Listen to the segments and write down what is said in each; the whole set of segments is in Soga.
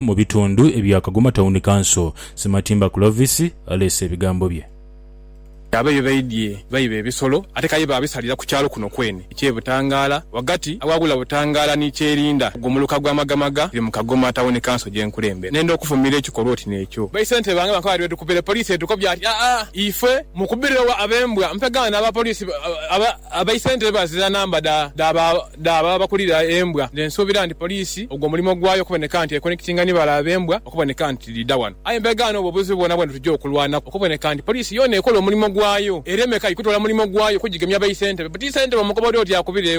mu bitundu ebya Kagoma Town Council, Sematimba Clovis aleese ebigambo bye. Abe ye baidhye baiba ebisolo ate kaye baabisalira ku kyalo kuno kwene eky'e Butangaala ghagati awaghula Butangaala ni Kyerinda ogwo muluka gwa Magamaga guli mu Kagoma Town Council gye nkulembera. Nenda okuvumira ekikolwa oti n'ekyo. Ba ssentebe bange bankoba bati bwetukubire poliisi etukobye ati, Aa, ife mukubire wa ab'embwa mpegana n'abapoliisi aba. Abaisentebe bazira namba dha babakulira embwa nze nsuubira nti poliisi ogwo mulimo gwayo okuboneka nti ekonekitinga ni balabe b'embwa okuboneka nti dhidha wano. Aye mbega n'obwo obuzibu bwona bwe tujja okulwanaku okuboneka nti poliisi yoona ekola omulimo gwayo ereme kai kutoola mulimo gwayo kugigemya baisentebe. But isentebe omukoba oli oti akubire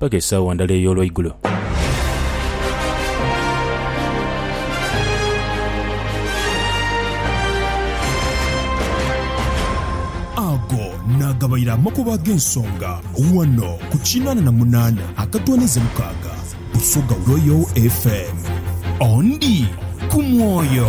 paka esaawa ndala ey'olweigulo. Ago naagabaire amakubo ag'ensonga ghano ku kinaana na munaana akatwanize mukaaga Busoga Royal FM. Ondi ku mwoyo.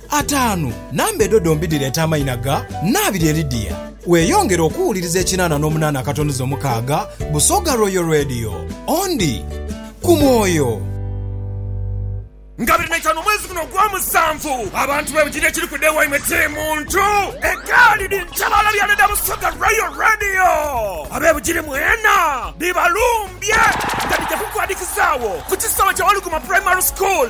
Ataanu, Namba edho dhombi dhireeta amaina ga Nnaabirye Lydia. Weeyongere okuwuliriza ekinaana n'omunaana akatonuza omukaaga Busoga Royal Radio. Ondi ku mwoyo. Nga biri naitaanu omwezi guno ogwomusanvu, abantu bebujinha ekiri ku day waimwe kiri muntu egaali dhi ntabaala byana dha Busoga Royal Radio. Abebujiri mwena dhibalumbye nga dhija kukwadhikizagho ku kisaawe kya Waluguma Primary School.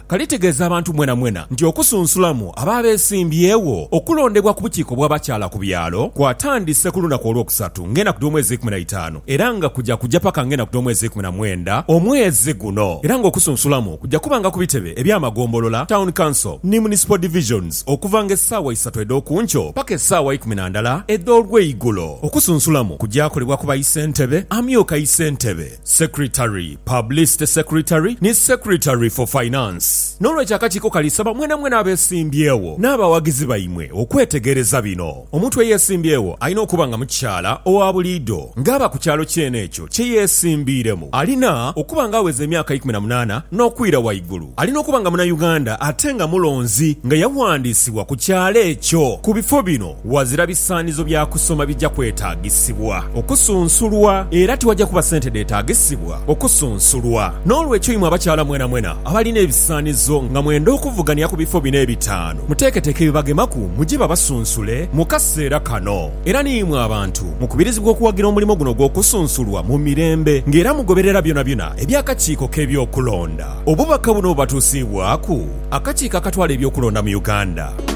Kale tegeeza abantu mwenamwena nti okusunsulamu abo abeesimbyewo okulondebwa ku bukiiko bw'abakyala ku byalo kwatandise ku lunaku Olwokusatu ng'enaku dh'omwezi eikumi na itaanu era nga kuja kuja paka ng'enaku dh'omwezi eikumi na mwenda omwezi guno era ng'okusunsulamu kuja kubanga ku bitebe eby'amagombolola, Town Council ni Municipal Divisions okuvanga essaawa isatu edh'okunkyo paka essaawa ikumi na ndala edh'olweigulo. Okusunsulamu kuja kolebwa ku baisentebe, amyuka isentebe, Secretary, Publicity Secretary ni Secretary for Finance. N'olwekyo akakiiko kali saba mwenamwena abeesimbyewo n'abawagizi baimwe okwetegereza bino. Omuntu eyeesimbyewo alina okuba nga mukyala owa buliido ng'aba ku kyalo kyene ekyo kye yeesimbiiremu. Alina okuba nga aweza emyaka eikumi na munaana n'okwira waigulu. Alina okuba nga Munauganda ate nga mulonzi nga yawandiisibwa ku kyalo ekyo ku bifo bino. Ghazira bisaanizo bya kusoma bigya kwetaagisibwa okusunsulwa, era tiwagya kuba sente dheetaagisibwa okusunsulwa. N'olwekyo imwe abakyala mwenamwena abalina ebisaanizo nga mwenda okuvugania ku bifo bino ebitaanu, muteeketeeke ebibagemaku mugye babasunsule mu kaseera kano. Era ni imwe abantu mukubirizibwa okuwagira omulimo guno ogw'okusunsulwa mu mirembe ng'era mugoberera byonabyona eby'akakiiko k'ebyokulonda. Obubaka buno bubatuusiibwaku akakiiko akatwala eby'okulonda mu Uganda.